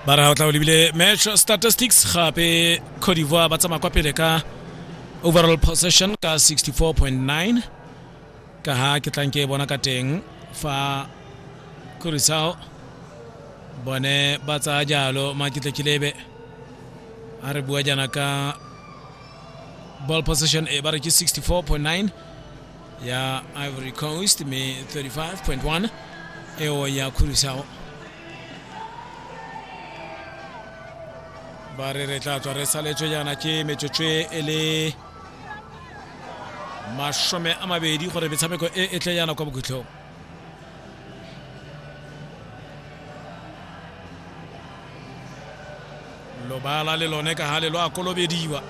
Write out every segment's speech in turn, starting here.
ba re ga o tla o lebile match statistics gape cote d'ivoire ba tsamaya kwa pele ka overall possession ka 64.9 ka ha ke tlang ke bona ka teng fa kurisao bone ba tsaya jalo maketlekilebe a re bua jana ka ball possession e ba re ke 64.9 ya ivory coast me 35.1 eo ya khurisao ba re re tla tswa re saletswe jaana ke metsotswe e le masome a mabedi gore metshameko e e tle jaana kwa bokhutlhong lobala le lone ka gale lo a kolobediwa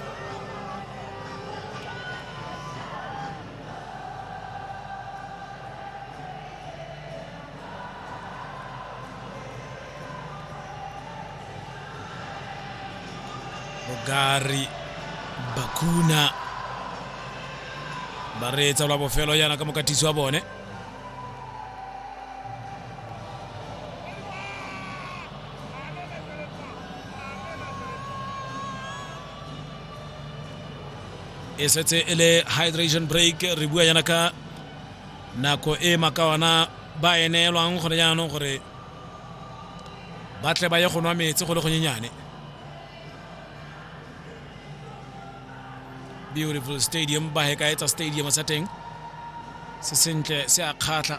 bogari bakuna ba reetsa lwa bofelo yana ka mokatisi wa bone e setse e le hydration break re bua yana ka nako e makawana ba e neelwang gone jaanong gore ba tle ba ye go nwa metsi go le gonyenyane beautiful stadium ba he ka etsa stadium sa teng se sentle se a kgatlha